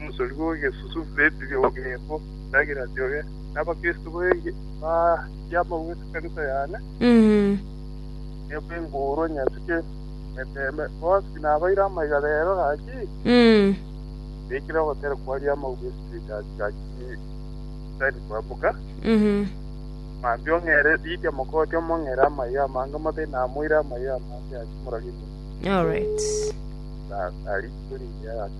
Omochori bw'egesusu, Lebi, Yokebbu, na Giladi oye nabakristo baye baria baume ekanisa yane, nigo inkoorwa nyasike emeteeme. Bonsi nabaire amaiga reero gaki, baikire ogotera kwaria amauga esibitari gaki tari koemuka. Mambia ong'eere Lidia mokooti omong'eere amaiga amange mote namoire amaiga amange ase moragio bw'ense. Alright. Tari korigia gaki.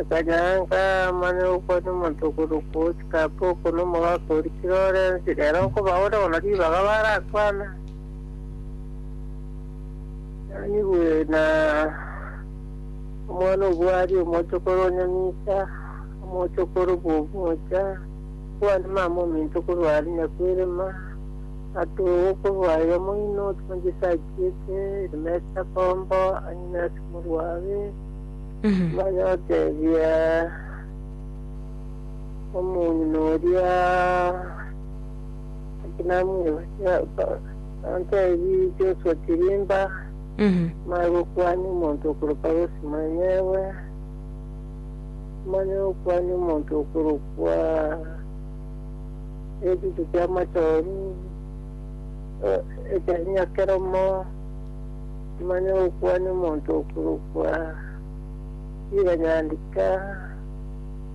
Akanyanka amanye okwa nomotokoro kochika apa oko nomogaka orichire ore ense rero nkobaure bono ribaga barakwana nanyigwe na omwana obwari omochokoro onyamisa omochokoro bwomocha kwani mama ominto korwa ari nyakwirima atogo korwa iga moino otumanchisa achiete rimesa kombo anyinase Omorwabĩ maya otebie omong'ina oria naki namwebokire, ontebie Joshua Kirimba maya gokwania omonto okorokwa Rosemary ewe, maya gokwania omonto okorokwa Echiche Kiamachoru, Ekenyia Keromo. Manye gokwania omonto okorokwa Chiranyandika,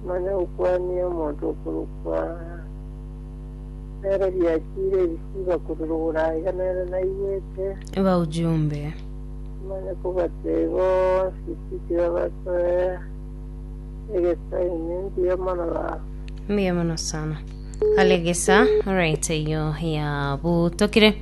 manye gokwania omonto okorokwa nere biachiire ebisiba korwa rogoro aiga nere naigwete. Ba ujumbe. Manye kobatebia bonsi tiki babasoe egesaini mbuya mono baba. Mbuya mono sana. Kale gesa, alright, eyo ya butokire.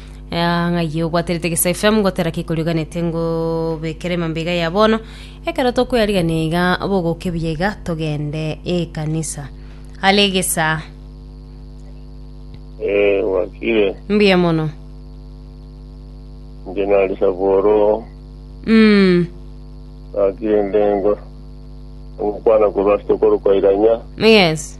Ah, ng'ai obwaterete gesa fm ngotera kikoriganete ngobekere mambega ya bono ekero tokweyarigania iga bogoke buya iga togende ekanisa ale gesa Eh, wakire mbuya mono nje nali saboro mm. wakire ndengo ngokwana korwa asitokoro kwairanya yes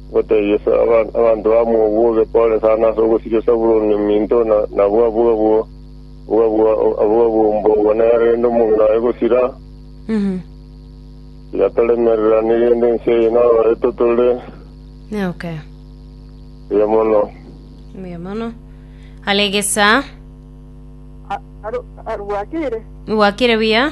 Gotebia abanto bamobua obekore sana ase ogosiria Sabuloni ominto, nabwo abwabwo mbogwa nere rende omong'ina oye gosira. Tiga toremereranie rende ense eye nabareto tore buya mono. Are egesaa. Rwakire buya.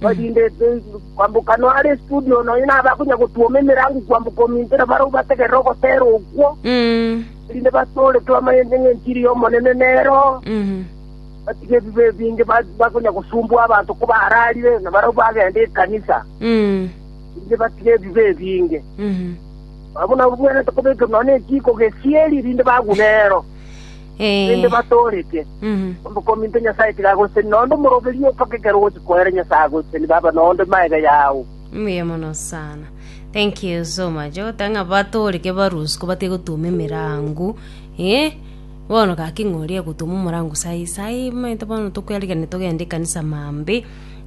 Erinde kwamboka noyo are estudio nonya nabe akonya gotwoma emerango kwamboka omintera barabwo bategerere ogoteera okwo, erinde batooretwe amayende ng'enchiri y'Omonene nero, batige ebibe ebinge bakonya gosumbwa abanto kobaararire, na barabwo bagende ekanisa, erinde batige ebibe ebinge. Abwo nabwo bwenerete kobekerwa nonya nechiko gesieri, erinde bagwe nero. rende Ee. batooreke. Mhm. Omokuminto Nyasae tiga agoseseni noonde omoroberio mpaka ekero ogochia koera Nyasae agoseseni baba noonde maega yao. Mbuya mono sana. Thank you so much. Ogoteba ng'a batooreke barusuke batige gotuma emerango. Eh, bono gaki ng'a oria egotuma omorango sai sai, omanyete bono tokwerigereria togende ekanisa maambia,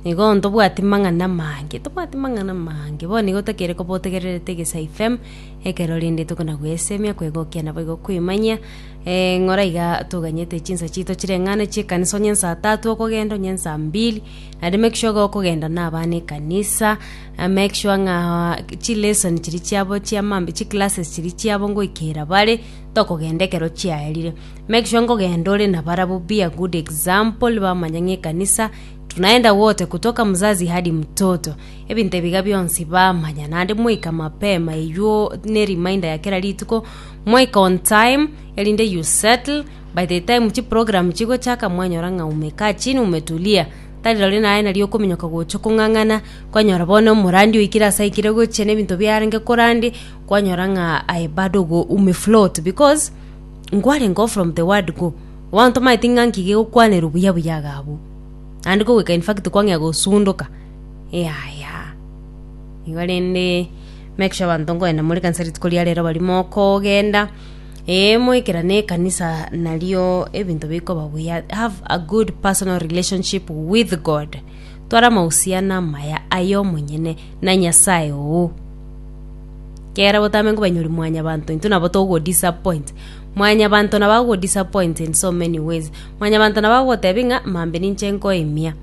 nigo bono tobwati mang'ana amange, tobwati mang'ana amange. Bono nigo tokeire koba otegererete Egesaifm, ekero rende tokona gwesemia, kwegokia naboigo koimanyia, Ng'ora iga toganyete chinsa chiito chireng'ane chi'ekanisa onye nsa tatu okogenda onye nsa mbili naende make sure iga okogenda na abana ekanisa eh, make sure ng'a chilesson chiri chiabo chia mambi chiclasses chiri chiabo ngoikera bare tokogenda ekero chiaerire make sure nkogenda ore nabarabwo be a good example bamanya ng'a ekanisa tunaenda wote kutoka mzazi hadi mtoto ebinto ebiga bionsi bamanya naende moika mapema eywo ne reminder ya kera rituko. Moika on time, erinde you settle, by the time chiprogram chigochaka mwanyora ng'a umekaa chini umetulia, tari rori naye nari okominyoka gocha okong'ang'ana, kwanyora bono omorandi oikire ase aikire gochia na ebinto biarenge korande, kwanyora ng'a aye bado go umefloat because nkwarenge o from the word go, bono tomaeti ng'a nki gegokwanerwa buya buya iga abwo, naende kogoika infact kwang'ea gosundoka, yaya. Igo rende make sure abanto nkoenda more kanisa rituko ria rero bari mokogenda eh, moikerane ekanisa nario ebinto bikoba buya have a good personal relationship with god twara amahusiano amaya aye omonyene na nyasaye oo kera botame nkobanyori mwanyabanto intwe nabo togodisappoint mwanyabanto nabo agodisappoint in so many ways mwanyabanto nabo agotebi ng'a mambe ninche nkoimia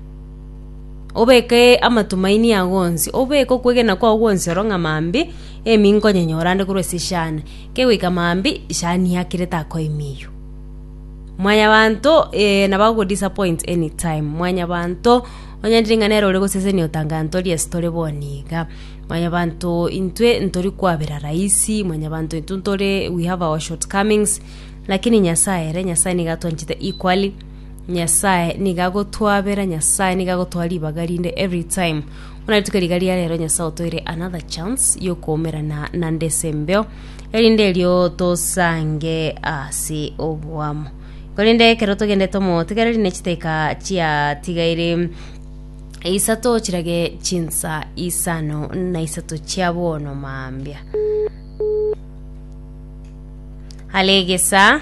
Obeke amatumaini ao onsi, obeke okwegena kwao gwonsi oro ng'a mambia emi nkonyenyora ande korwa ase eshani, kegoika mambia eshani yakire takoimiiywa. Mwanyabanto eh nabo agogo disappoint any time, mwanyabanto onye ndiri ng'a nere ore gosesenia otanga ng'a ntori ase tore bono iga. Mwanyabanto intwe ntori kwabera rahisi, mwanyabanto intwe ntore we have our short comings, lakini Nyasaye ere, Nyasaye nigo atwanchete equally. Nyasae nigo agotwabera, Nyasae nigo agotoa ribaga rinde every time. Buna rituko riga ria rero Nyasae otoire another chance yokoumerana nande ase embeo, erinde erio tosange ase oboamo. Korende ekero togendete omotigareri ne chiteka chiatigaire isato chirage chinsa isano na isato chia bono mambia. Alegesa.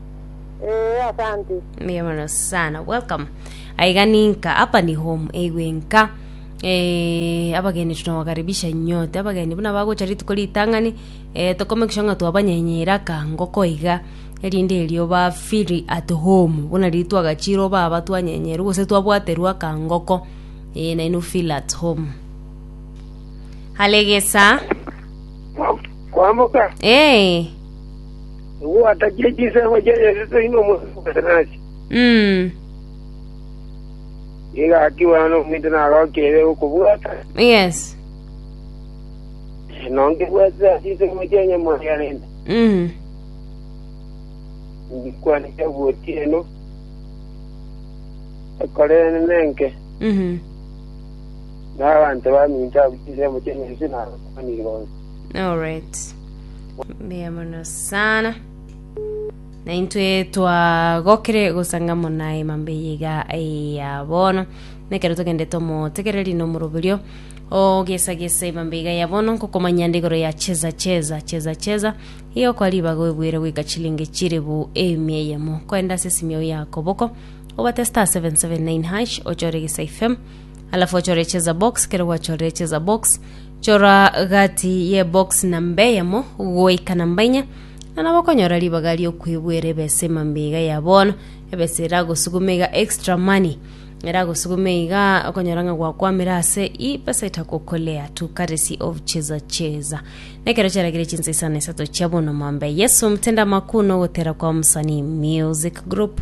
Ee, asante. Mbuya mono sana welcome aiga ninka hapa ni home eigwe nka eh, abageni tunawakaribisha nyote abageni buna bagocha rituko ritang'ani eh, tokomekisha ng'a twabanyenyera kangoko iga erinde erio ba feel at home buna riri twagachirwo baba twanyenyeru gose twabwaterwa kangoko eh, naino feel at home halegesa Kwamboka. eh, Ogwatakia chinsemo chia Yeso toino omonto bweka nache. Nigo akigwa nominto nagokire okobwata. Yes. Nongebwatire ase chinsemo chia Nyamoria rende. Ngikwane chia gotieno. Ekorene nenke. Na abanto baminto abwo chinsemo chia Yeso nabakwanire bonsi. All right. Mbuya mono sana. Na intwe twagokire gosanga mona emambe yiga ya bono. Nekero togende tomotegereri no moroberio. O gesa gesa emambe yiga ya bono nkokomanya nde igoro ya cheza cheza cheza cheza. Iyo kwa ribago ebwire gwika chilingi chiribu emia eyemo. Koenda ase simio yako boko. Obatesta 779 hash ochore gesa ifem. Alafu ochore chesa box, kero gwachorire chesa box, chora gati ye box namba eyemo goika namba inya, na nabo okonyora ribaga riokwebwera ebesa emambe iga ya bono, ebesa eragosugume iga extra money eragosugume iga okonyora ng'a gwakwamire ase i pesa etagokolea to courtesy of chesa chesa. Nekero chiaragire chinsa isano na isato chia bono mambia Yesu mtenda makuu nogotera kwa mosani music group.